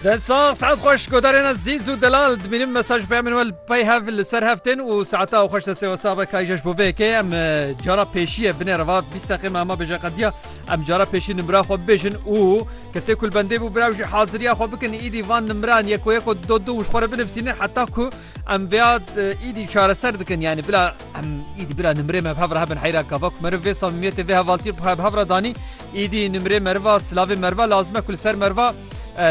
Te sax saet xweş godarêna zîz û delal dimînim mesaj peyam min wel pey hev li ser heftên û saeta û xweş desê wesave kayjeş bo vêkê em cara pêşiye binê reva bîst deqê me hema bêje qediya em cara pêşî nimra xwe bibêjin û kesê kul bendê bû biraw jî haziriya xwe bikin îdî van nimran yeko yeko do du û xwe re binivîsînin heta ku em vêya îdî çareser dikin yani bila em îdî bila nimrê me bi hev re hebin heyra kava ku meriv vê samimiyetê vê hevaltî bi hev re danî Îdî nimrê meriva, silavê meriva lazim e ku li ser meriva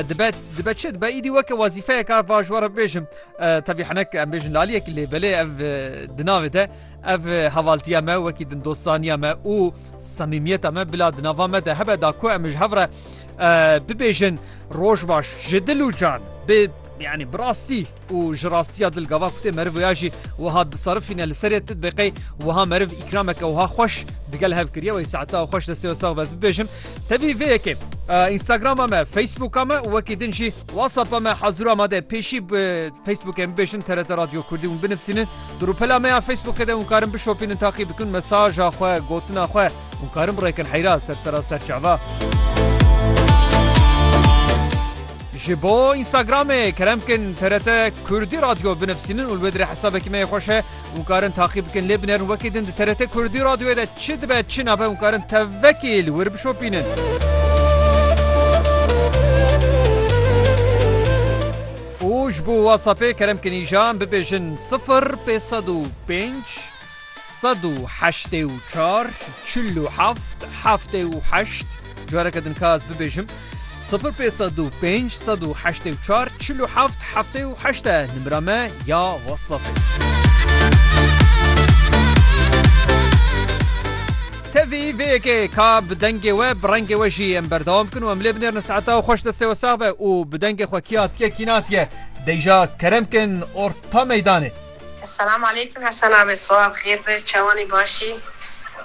dibe dibe çi dibe îdî weke wezîfeyeka va ji we re bibêjim tevî hinek em bêjin laliyek lê belê ev di navê de ev hevaltiya me wekî din dostaniya me û semîmiyeta me bila di nava me de hebe da ku em ji hev re bibêjin roj baş ji dil û can bê yanî bi rastî û ji rastiya dil gava ku tê meriv wêya jî wiha disarifîne li serê tu dibê qey wiha meriv îkrameke wiha xweş digel hev kiriye wey saeta xweş destê we sax be ez bibêjim tevî vê yekê Instagrama me Facebooka me û wekî din jî WhatsAppa me hezir amade pêşî bi Facebookê min bêjin TRT Radyo Kurdî hûn binivîsînin di rûpela me ya Facebookê de hûn karin bişopînin taqî bikin mesaja xwe gotina xwe Hûn karin birêkin heyra ser sera ser çava. Ji bo Instagramê kerem bikin TRT Kurdî Radyo binivîsînin û li wê dirê hesabekî me yê xweş e û karin taqî bikin lê binerin wekî din di TRT Kurdî Radyoyê de çi dibe çi nabe û karin tevvekî li wir bişopînin. û ji bo WhatsAppê kerem bikin îjan bibêjin sifir pê sed û pênc Sed û heştê û çar, çil û heft, heftê û heşt, careke din ka ez bibêjim, sifir pê sed û pênc, sed û heştê û çar, çil û heft, heftê û heşt e nimira me ya WhatsAppê. Tevî vê yekê ka bi dengê we bi rengê we jî em berdewam bikin û em lê binêrin saeta xweş destê we sax be û bi dengê xwe kî hatiye kî natiye deyja kerem kin orta meydanê. Selam aleyküm Hesen abi swa bi xêr be çawanî baş î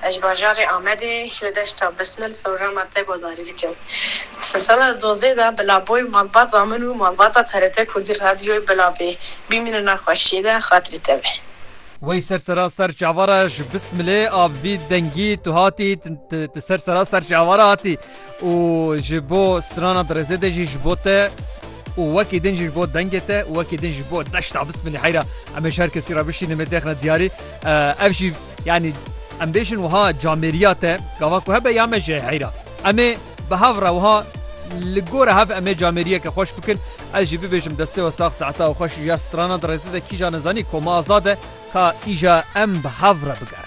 ez ji bajarê Amedê li deşta Bismil programa te guhdarî dikim di sala dozê de bi laboy malbata min û malbata TRT Kurdî radyoyê bilabê bîmînin a xweşiyê de xatirî te be. Wey ser sera ser çavara ji Bismilê a vî dengî tu hatî tu ser sera ser çavara hatî. û ji bo strana dirêzê de jî ji bo te û wekî din jî ji bo dengê te û wekî din jî bo deşta bismilî heyra em ê ji her kesî re bişînim ê têxine diyarî ev jî yanî em bêjin wiha camêriya te gava ku hebe ya me jê heyra em ê bi hev re wiha li gora hev em ê camêriyeke xweş bikin ez jî bibêjim destê we sax saeta û xweş ya strana dirêzê de kîja nizanî koma azad e ka îja em bi hev re bigerin.